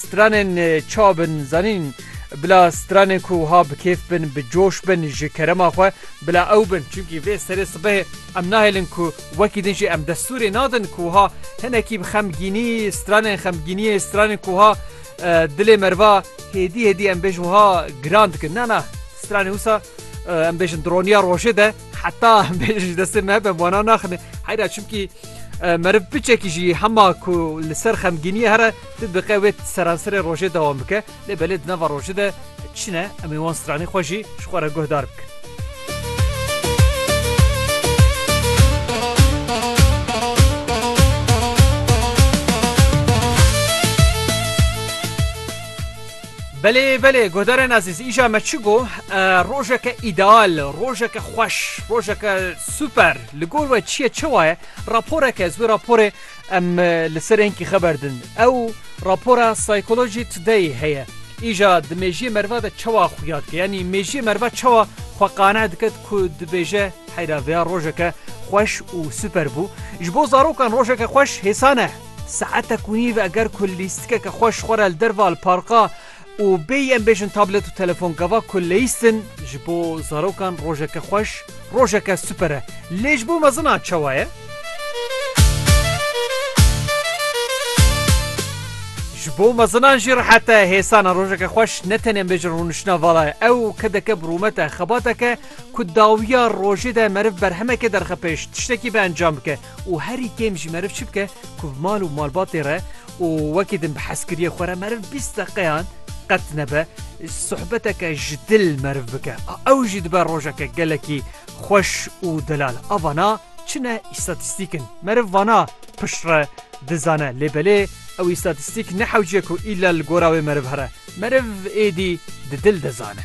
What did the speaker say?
Stranên ça bin zanîn bila stranên ku wiha bi kêf bin, bi coş bin ji kerema xwe bila ew bin. Çimkî vê serê sibehê em nahêlin ku wekî din jî em destûrê nadin ku wiha hinekî bi xemgînî stranên xemgîniyê stranên ku wiha dilê meriva hêdî hêdî em bêjin wiha giran dikin. Na na stranê wisa em bêjin di roniya rojê de. Heta me ji destê me be wana naxine heyra çimkî meriv biçekî jî hema ku li ser xemgîniye here tu diqe wê seranserê rojê dewam bike lê belê di nava rojê de çine em ê wan stranê xwe jî ji xwe re guhdar bikin. Belê belê guhdarên ezîz îja me çi got rojeke îdeal, rojeke xweş, rojeke super li gor we çi ye çewa ye raporeke ez wê raporê em li ser enkî xeber din. Ew rapora Psychology Today heye. Îja di mêjiyê meriva de çewa xuya dike yanî mêjiyê meriva çewa xwe qane dike ku dibêje heyra vêya rojeke xweş û super bû. Ji bo zarokan rojeke xweş hêsan e. Saeta ku nîv e ger ku lîstikeke xwe ji xwe re li derva li parka û bêyî em bêjin tablet û telefon gava ku leyîst in ji bo zarokan rojeke xweş, rojeke super e. Lê ji bo mezinan çawa ye? Ji bo mezinan jî rehet e. Hêsana rojeke xweş ne tenê em bêjin rûniştina vala ye. Ew kedeke bi rûmet e, xebateke ku dawiya rojê de meriv berhemekê derxe pêş, tiştekî biencam bike. û herî kêm jî meriv çi bike ku bi mal û malbatê re û wekî din bi hezkiriyê xwe re meriv bîst deqeyan qet nebe sohbeteke ji dil meriv bike a ew jî dibe rojeke gelekî xweş û delal a vana çi ne îstatîstîk in meriv vana pişt re dizane lê belê ew îstatîstîk ne hewciye ku îlla li gora wê meriv here meriv êdî di dil dizane.